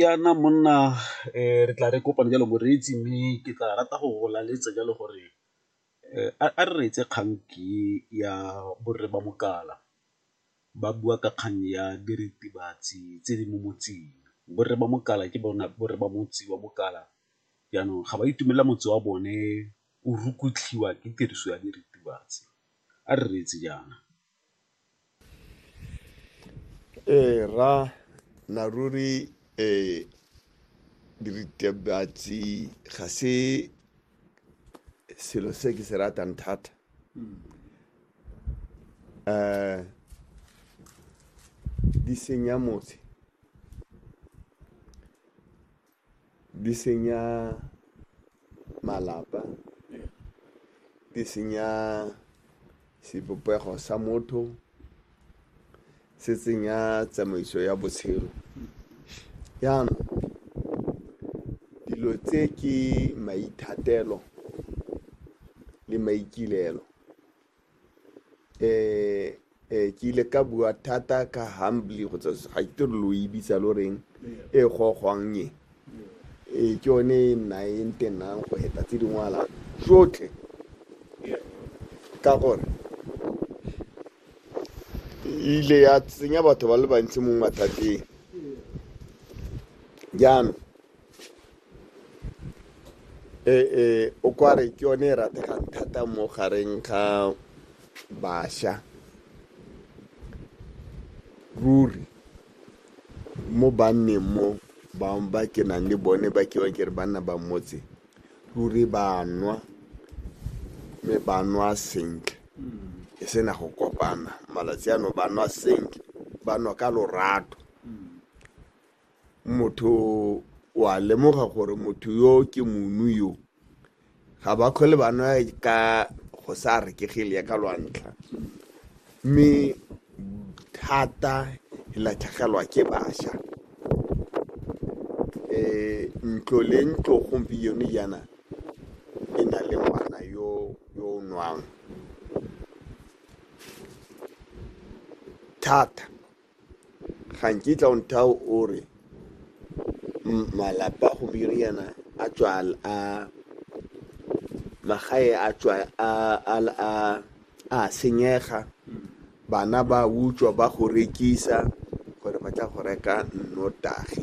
Jaana monna re tla re kopane jalo moreetsi mme ke tla rata go go laletsa jalo gore a re reetse kgang ke ya borre ba mokala ba bua ka kgang ya diritibatsi tse di mo motseng. Borre ba mokala ke bona borre ba motse wa mokala jaanong ga ba itumelela motse wa bone o rukutlhiwa ke tiriso ya diritibatsi, a re reetse jaana. Ee, ra na ruri eh, diritibatsi ga se selo se ke se ratang thata eh di senya motse Di senya malapa, di senya sebopego sa motho, se tsenya tsamaiso ya botshelo. Jaanong dilo tse ke maithatelo le maikaelelo. eh eh ke ile ka bua thata ka humbly go tsa ga ke tlo lo e bitsa lo reng e gogwang e e ke yone e nna e ntenang go eta tse dingwala tsotlhe ka gore e ile ya tsenya batho ba le bantsi mo mathateng jaanong Ee, o kware ke yone e rategang thata mo gareng ga bašwa ruri mo banneng mo bangwe ba ke nang le bone ba ke ke re banna ba motse ruri ba nwa mme ba nwa sentle e sena go kopana malatsi ano ba nwa sentle ba nwa ka lorato motho wa lemoga gore motho yo ke monu yo ga ba kgole ba nwa ka go sa rekegele ya ka lwantlha mme thata e latlhegelwa ke bašwa um ntlo le ntlo gompieno jaana e na le ngwana yo yo o nwang thata ga nkitla o nthao o re malapa go biriana a tswal a magae a tswa a a a a senyega bana ba utswa ba go rekisa gore ba tla go reka nnotagi